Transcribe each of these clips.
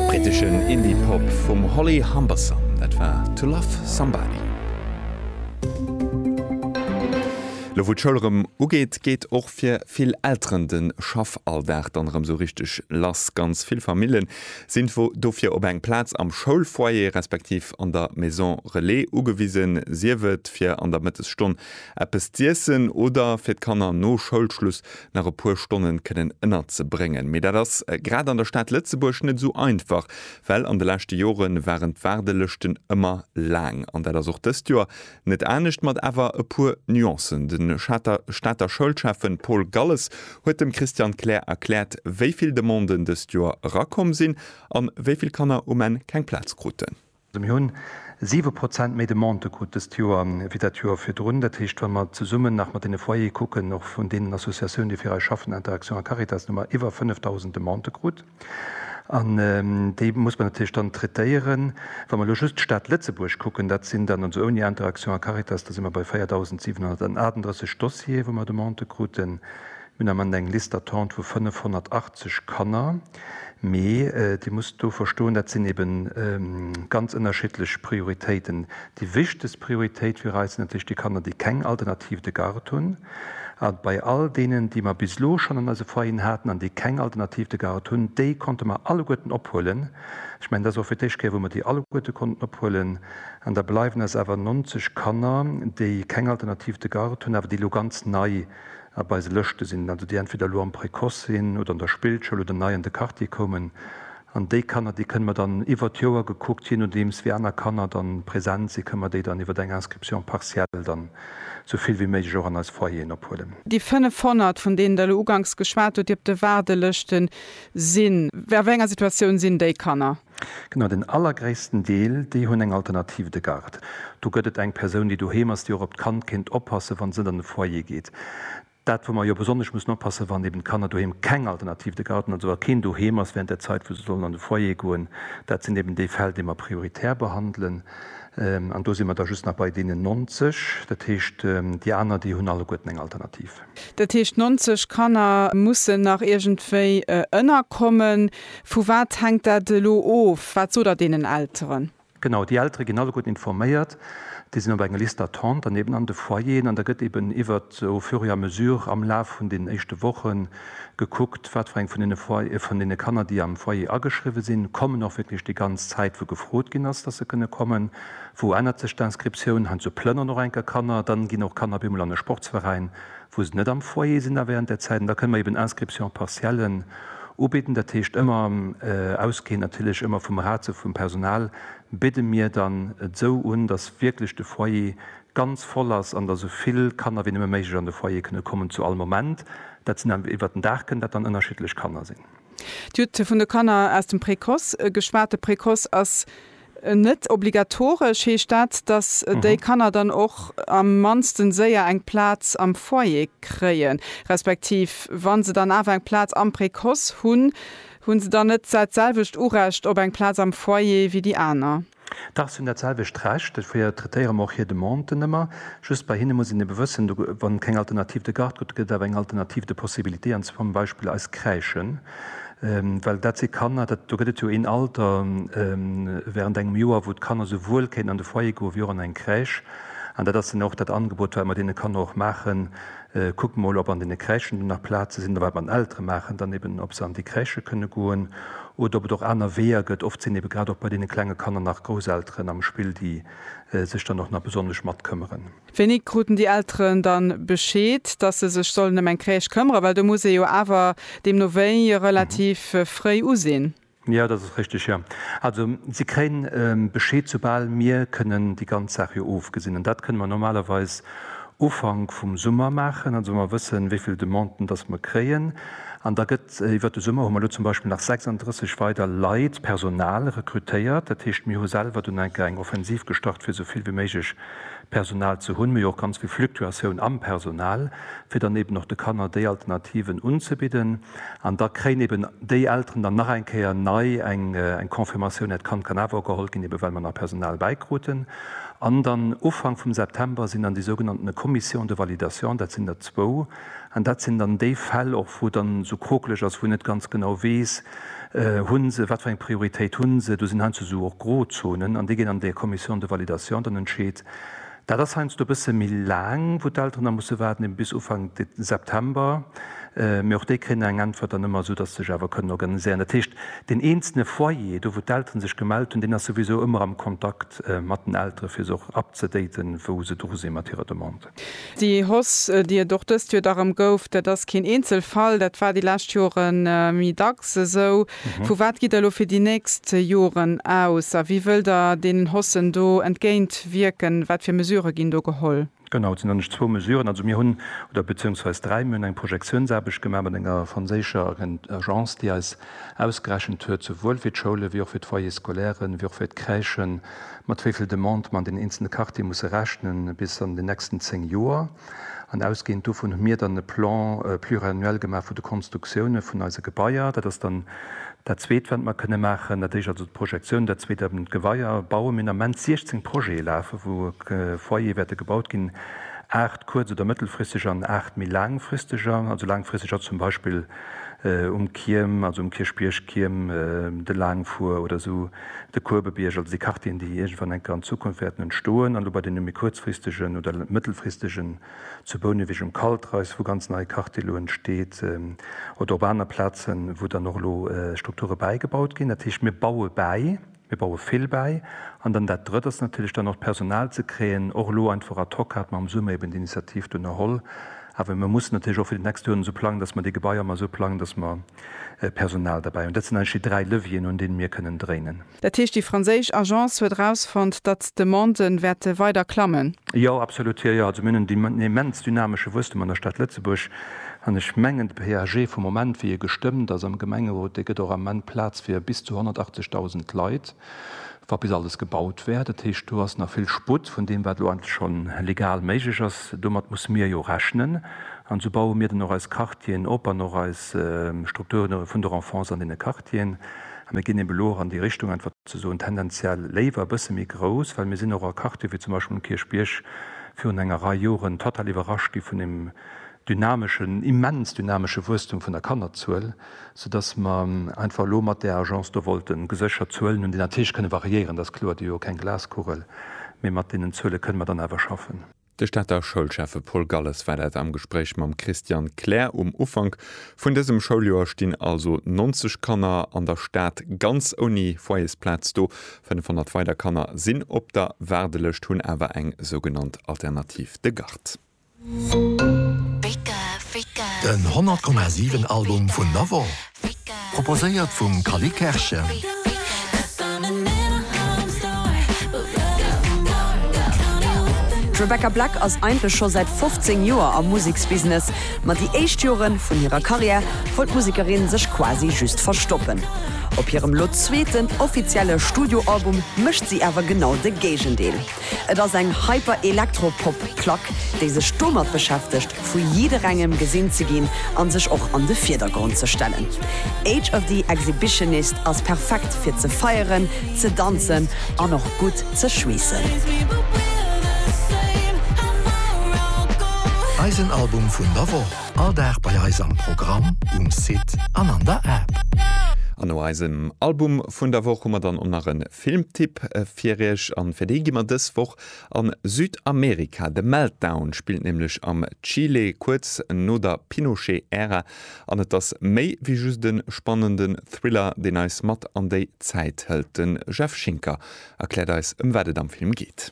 Briteschen Indie Pop vum Holly Humberstone, dat war To Love Somebody. Lo wou d'Schoul erëm ugeet, geet och fir vill Elteren de Schaffalldag dann erëm sou richteg lass. Ganz vill Famille sinn dofir op eng Plaz am Schoulfoyer respektiv an der Maison Relais ugewisen, sief et fir an der Mëttesstonn eppes z'iessen oder fir d'Kanner no Schoulschluss nach e puer Stonnen kënnen ënnerzebréngen. Mee dat ass grad an der Stad Lëtzebuerg net esou einfach, well an de leschte Jore waren d'Waardelëschten ëmmer laang. An dat ass och dëst Joer net anescht, mat awer e puer Nuancen. De Stater Schoulschäffen Paul Galles huet dem Christiane Kleer erkläert, wéi vill Demanden dëst Joer erakomm sinn a wéi vill Kanner um Enn keng Plaz kruten. Mir hu siwe Prozent méi Demandë krut dëst Joer wéi dat Joer virdrun. Dat heescht, wa mer zesummen nach mat deene Foyere kucken, och vun deenen Associatiounen, déi fir eis schaffen, Interaction a Caritas, hu mer iwwer 5.000 Demandë krut. An déi muss mer natierlech dann traitéieren. Wa mer elo just d'Stad Lëtzebuerg kucken, dat sinn dann, also ouni Interaction a Caritas, da si mer bei 4.738 Dossiere, wou mer Demandë kruten. Mir hunn am Ament eng Liste d'attente vu 580 Kanner. Mee Dir musst do verstoen, dat sinn eben ganz ënnerschiddlech Prioritéiten. Déi wichtegst Prioritéit fir eis sinn natierlech déi Kanner, déi keng Alternativ de garde hunn. A bei all deenen, déi mer bis elo schonn an eise Foyeren haten an déi keng Alternativ de garde hunn, déi konnte mer alleguerten ophuelen. Ech mengen, dat ass och fir d'éischt Kéier, wou mer déi alleguerte konnten ophuelen. An da bleiwen eis awer 90 Kanner, déi keng Alternativ de garde hunn, awer déi elo ganz nei a bei se Lëschte sinn, also déi entweder elo am Précoce sinn oder an der Spillschoul oder nei an de Quartier koumen. An déi Kanner, déi kënne mer dann iwwert d'Joer gekuckt, jee nodeems wéi aner Kanner dann present sinn, kënne mer déi dann iwwert eng Inscription partielle dann esou vill wéi méiglech och an eis Foyeren ophuelen. Déi 500, vun deenen Der elo uganks geschwat hutt, déi op de Waardelëschte sinn, a wéi enger Situatioun sinn déi Kanner? Genau, den allergréissten Deel, déi hunn eng Alternative de garde. Do gëtt et eng Persoun, déi doheem ass, déi och op d'Kand kéint oppassen, wann se net an de Foyer geet. Dat, wou mer jo besonnesch mussen oppassen, wann eben d'Kanner doheem keng Alternative de garde hunn, also wa keen doheem ass während der Zait, wou se sollen an de Foyer goen, dat sinn eben déi Fäll, déi mer prioritär behandelen. An do si mer da just nach bei deenen 90. Dat heescht, déi aner, déi hunn alleguerten eng Alternative. Dat heescht 90 Kanner mussen nach iergendwéi ënnerkommen. Vu wat hänkt dat elo of? Wat sot Der deenen Elteren? Genau, déi Eltere ginn alleguerten informéiert. Déi sinn op enger Liste d'attente an eben an de Foyeren. An da gëtt eben iwwert au fur et à mesure am Laf vun deenen éischte Woche gekuckt, wat fir eng vun deene Foy, vun deene Kanner, déi am Foyer ageschriwwen sinn, kommen och wierklech déi ganz Zäit, wou gefrot ginn ass, dass se kënne kommen. Wou ännert sech d'Inscriptioun? Heiansdo plënneren och enker Kanner, dann ginn och Kanner op eemol an e Sportsveräin, wou se net am Foyer sinn da während där Zäit. An da kënne mer eeben Inscriptions partiellen ubidden. Dat heescht ëmmer ausgehend natierlech ëmmer vum Ratio vum Personal bidde mir dann et esou un, dass wierklech de Foyer ganz voll ass an dass esou vill Kanner wéi nëmme méiglech an de Foyer kënne kommen zu all Moment. Dat sinn dann iwwert den Dag kënnen dat dann ënnerschiddlech Kanner sinn. Dir hutt vun de Kanner aus dem Précoce geschwat. De Précoce ass Net obligatoresch heescht dat, datt déi Kanner dann och am mannsten séier eng Plaz am Foyer kréien, respektiv wa se dann awer eng Plaz am Précoce hunn, hu se dann net dat selwecht Urecht op eng Plaz am Foyer wéi déi aner? Dach, se hunn dat selwecht Recht. Dofir traitéiere mer och hir Demanden ëmmer. Just bei hinne muss een ebe wëssen, wann et keng Alternative de garde gëtt, gëtt et awer eng Alternative de possibilité, an zum Beispill eis Crèchen. Well dat si Kanner, dat, do gëtt et jo een Alter während engem Joer, wou d'Kanner souwuel kéinten an de Foyer goen, wéi och an eng Crèche. An dat ass dann och dat Angebot, wat mer deene Kanner och maachen, Kuckt emol, ob an deene Crèchen do nach Plaze sinn. A wat mer den Eltere maachen dann eben, ob se an déi Crèche kënne goen oder ob et och aner Weeër gëtt. Oft sinn ebe grad och bei deene klenge Kanner nach Grousselteren am Spill, déi sech dann och nach besonnesch matkëmmeren. Wéini kruten déi Elteren dann Bescheed, dass se sech sollen ëm eng Crèche këmmeren? Well do muss ee jo awer deemno wéi relativ fréi usinn. Jo, dat ass richteg, jo. Also si kréien Bescheed, soubal mir kënnen déi ganz Saach jo ofgesinn. An dat kënne mer normalerweis Ufank vum Summer maachen, also wa mer wëssen, wéi vill Demanden dass mer kréien. An da gëtt iwwert de Summer, hu mer elo zum Beispill nach 36 weider Leit, Personal, rekrutéiert. Dat heescht, mir hu selwer dunn eng Kéier eng Offensiv gestart, fir esou vill wéi méiglech Personal ze hunn, mee och ganz vill Fluktuatioun am Personal, fir dann eben och de Kanner déi Alternativen unzebidden. An da kréien eben déi Elteren dann nach eng Kéier nei eng Confirmatioun, dat Kand kann awer och geholl ginn, eben well mer nach Personal bäikruten. An dann Ufank vum September sinn dann déi sougenannten Commissions de validation, dat sinn der zwou, An dat sinn dann déi Fäll och, wou et dann esou krokeleg ass, wou een net ganz genau weess, hu se, wat fir eng Prioritéit hu se. Do sinn heiansdo esou och Grozonen an déi ginn an de Commission de validation dann entscheet. Dat ass heiansdo e bësse méi laang, wou d'Elteren da musse waarden, eben bis Ufank September. Mee och déi kréien da eng Äntwert dann ëmmer, esou dass se sech awer kënnen organiséieren. Dat heescht, deen eenzele Foyer, do wou d'Elteren sech gemellt hunn, deen ass souwisou ëmmer am Kontakt mat den Eltere fir se och up ze daten, wou se dru si mat hirer Demande. Déi Hoss, déi et och dëst Joer da rëm gouf, dat ass keen Eenzelfall, dat war déi lescht Jore méi dacks esou. Vu wat gitt Der elo fir déi nächst Joren aus a wéi wëllt Der deenen Hossen do entgéint wierken? Wat fir Mesurë ginn do geholl? Genau, et sinn eigentlech zwou Mesuren. Also mir hunn, oder beziéungsweis dräi, mir hunn eng Projektiounsaarbecht gemaach mat enger franséischer Agence, déi eis ausgerechent huet, souwuel fir d'Schoule wéi och fir d'Foyers scolaires, wéi och fir d'Crèchen, mat wéi vill Demandë mer an den eenzele Quartiere musse rechne bis an den nächsten zéng Joer. An ausgehend dovun hu mir dann e Plan pluriannuel gemaach vu de Konstruktioune vun eise Gebaier. Dat ass dann dat Zweet, wat mer kënne maachen. Dat Éischt also d'Projektioun, dat Zweet eben d'Gebaier bauen. Mir hunn am Moment 16 Projete lafe wou Foyere wäerte gebaut ginn, aacht kuerz oder mëttelfristeger an aacht méi laangfristeger. Also laangfristeg ass zum Beispill um Kierm, also um Kierchbierg, Kierm, de Laangfur oder esou. De Kuebebierg, also déi Quartieren, déi iergendwann eng Kéier an Zukunft wäerten entstoen, an elo bei deene méi kuerzfristegen oder mëttelfristegen, zu Bouneweg um Kaltreis, wou ganz nei Quartier elo entsteet, oder op aner Plazen, wou dann och elo Strukture bäigebaut ginn. Dat heescht, mir baue bäi, mir baue vill bäi. An dann dat Drëtt ass natierlech dann och d'Personal ze kréien. Och elo einfach ad hoc hat mer am Summer eben déi Initiativ do ënnerholl. Awer mir mussen natierlech och fir déi nächst Joren esou plangen, dass mer déi Gebaier ëmmer esou plangen, dass mer, Personal derbäi. An dat sinn eigentlech déi dräi Levieren, un deene mir kënnen dréinen. Dat heescht, déi franséisch Agence huet erausfonnt, datt d'Demande wäerte weider klammen? Jo, absolut. Jo, jo. Also mir hunn en immens dynamesche Wuesstum an der Stad Lëtzebuerg. An ech mengen, de PAG vum Moment, wéi e gestëmmt ass am Gemengerot, dee gëtt och am Ament Plaz fir bis zu 180.000 Leit. wa bis alles gebaut wär. Dat heescht, do ass nach vill Sputt vun deem, wat elo eigentlech scho legal méiglech ass. Domat musse mir jo rechnen. An esou baue mir dann och eis Quartieren op an och eis Strukturen vun der Enfance an deene Quartieren. A mir ginn eben elo och an déi Richtung, einfach ze soen, tendenziell léiwer e bësse méi grouss, well mir sinn och a Quartiere wéi zum Beispill um Kierchbierg virun enger Rei Joren total iwwerrascht gi vun deem dynameschen, immens dynamesche Wuesstum vun der Kannerzuel. soudass mer einfach elo mat där Agence do wollten geséchert Zuelen hunn, déi natierlech kënne variéieren, dat ass kloer, déi hu jo keng Glaskugel, mee mat deenen Zuele kënne mer dann awer schaffen. De Stater Schoulschäffe Paul Galles war dat am Gespréich mam Christian Kler. Um Ufank vun dësem Schouljoer stinn also 90 Kanner an der Stad ganz ouni Foyersplaz do. 500 weider Kanner sinn op der Waardelëscht, hunn awer eng sougenannt Alternative de garde. Den 100 Komma 7 Album vun Navon, proposéiert vum Cally Kerschen. D'Rebecca Black ass eigentlech scho säit 15 Joer am Museksbusiness, ma déi éischt Jore vun hirer Karriär wollt d'Musekerin sech quasi just verstoppen. Op hirem lo zweeten offizielle Studioalbum mécht si awer genau de Géigendeel. Et ass eng Hyper-Elektro-Pop-Plack, déi sech domat beschäftegt, vu jidderengem gesinn ze ginn a sech och an de Virdergrond ze stellen. Age of the Exhibitionist ass perfekt fir ze feieren, ze danzen an och gutt ze schweessen. Eisen Album vun der Woch, all Dag bei eis am Programm, um Site an an der App. An no eisem Album vun der Woch hu mer dann och nach en. Filmtipp fir iech, an fir dee gi mer dës Woch a Südamerika. The Meltdown spillt nämlech am Chile kuerz no der Pinochet-Ära, an et ass méi wéi just e spannenden Thriller, deen eis mat an déi Zäit hëlt. Den Jeff Schinker erkläert eis, ëm wat et am Film geet.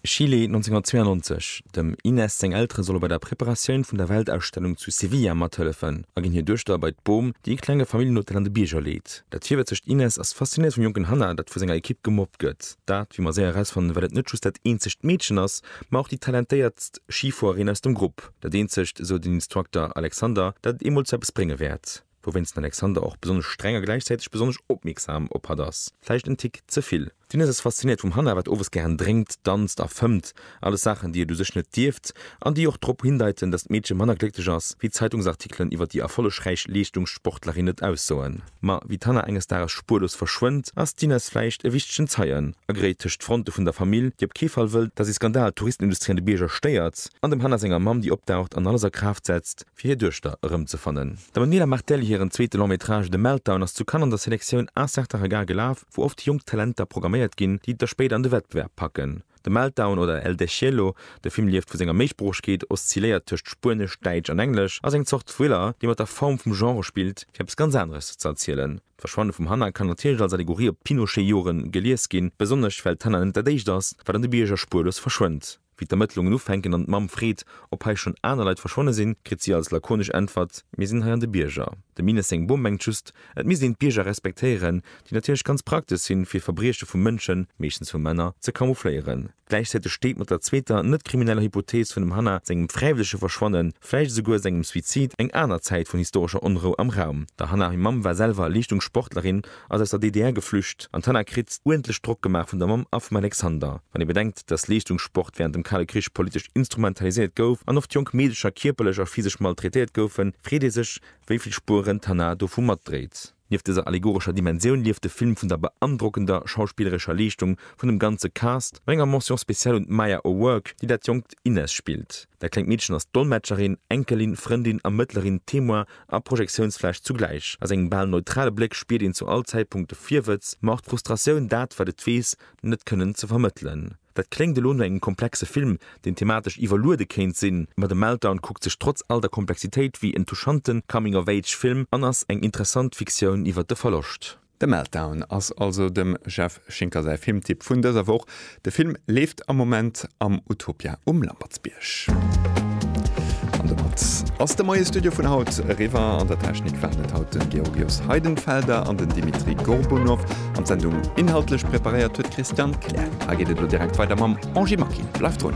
Chile 1992, Dem Inés seng Eltere solle bei der Preparatioun vun der Weltausstellung zu Sevilla mathëllefen a ginn hir Duechter bei d'Bom, déi e klenge Familljenhotel an de Bierger leet. Dat virwëtzegt Inés ass faszinéiert vum jonken Hannah, dat vu senger Ekipp gemobbt gëtt. Dat, wéi mer séier erausfannen, well et net just dat eenzegt Meedchen ass, ma och déi talentéiertst Schifuererin aus dem Grupp. Dat eenzegt, esou den Instructor Alexander, dat et eemol zu eppes brénge wäert. Wouwéinst den Alexander och besonnesch streng a gläichzäiteg besonnesch opmierksam op hatt ass. Vläicht en Tick ze vill. D'Inès ass fasziniert vum Hanna, wat owes gären drénkt, danzt a fëmmt. Alles Saachen, déi et u sech net dierft an déi och drop hindeiten, datt d'Meedche manner glécklech ass, wéi d'Zeitungsartikelen iwwer déi erfollegräich Leeschtungssportlerin et aussoen. Ma wéi d'Hanna enges Dages spuerlos verschwënnt, ass d'Inès vläicht e wichtegen Zeien, agréit tëscht d'Fronte vun der Famill, déi op kee Fall wëllt, datt ee Skandal d'Touristenindustrie an de Bierger stéiert, an dem Hanna senger Mamm, déi opdaucht an alles a Kraaft setzt, fir hir Duechter erëmzefannen. D'Emanuela Martelli hiren zweete Long Métrage The Meltdown ass zu Cannes an der Selektioun Un certain regard gelaf, wou oft jonk Talenter programméiert ginn, déi et da spéider an de Wettbewerb packen. The Meltdown oder El Deshielo, de Film lieft vu senger Méisproochegkeet, oszilléiert tëscht Spuenesch, Däitsch an Englesch, ass eng Zort Thriller, dee mat der Form vum Genre spillt, fir eppes ganz aneres ze erzielen. D'Verschwanne vum Hannah kann natierlech als Allegorie op d'Pinochet-Joren gelies ginn, besonnesch well d'Hannah net dat éischt ass, wat an de Bierger spuerlos verschwënnt. Wéi d'Ermëttlungen ufänken an d'Mamm freet, ob hei schonn aner Leit verschwonne sinn, kritt si als lakonesch Äntwert, Mir sinn hei an de Bierger. De Mines seng Bom mengt just, et misst een d'Bierger respektéieren, déi natierlech ganz praktesch sinn, fir Verbrieche vu Mënschen, meeschtens vu Männer, ze camoufléieren. Gläichzäiteg steet mat der zweeter, net krimineller Hypothees vun dem Hannah sengem fräiwëllege Verschwannen, vläicht esouguer sengem Suizid, eng aner Zäit vun historescher Onrou am Raum. Der Hannah hir Mamm war selwer Leeschtungssportlerin ass aus der DDR geflücht an d'Hanna kritt uerdentlech Drock gemaach vun der Mamm a vum Alexander. Wann ee bedenkt, datt Leeschtungssport wärend dem Kale Krich politesch instrumentaliséiert gouf an oft jonk Meedecher kierperlech a physesch maltraitéiert goufen, freet ee sech, wéi vill Spueren d'Hanna dovu matdréit. Nieft dëser allegorescher Dimensioun lieft de Film vun der beandrockender schauspillerescher Leeschtung vun dem ganze Cast, mat enger Mention spéciale un d'Maya O'Rourke, déi dat jonkt Inez spillt. Dat klengt Meedchen ass Dolmetscherin, Enkelin, Frëndin a mëttlerin Témoin a Projektiounsfläch zugläich. A sengem bal neutrale Bléck spiert een zu all Zäitpunkt de Virwëtz, ma och d'Frustratioun, dat, wat et weess, net kënnen ze vermëttelen. Dat kléngt elo no engem komplexe Film, deen thematesch iwwerluede kéint sinn, ma The Meltdown kuckt sech trotz all der Komplexitéit wéi en touchante Coming-of-age-Film an ass eng interessant Fiktioun iwwer de Verloscht. The Meltdown ass also dem Jeff Schinker säi Filmtipp vun dëser Woch. De Film leeft am Moment am Utopia um Lampertsbierg. An domat ass de Moie Studio vun haut eriwwer. An der Technik waren et haut de Georgios Heidenfelder an den Dimitri Gorbunov an d'Sendung inhaltlech preparéiert huet d'Christiane Kleer. Hei geet et elo direkt weider mam Angie Maki. Bleift drun!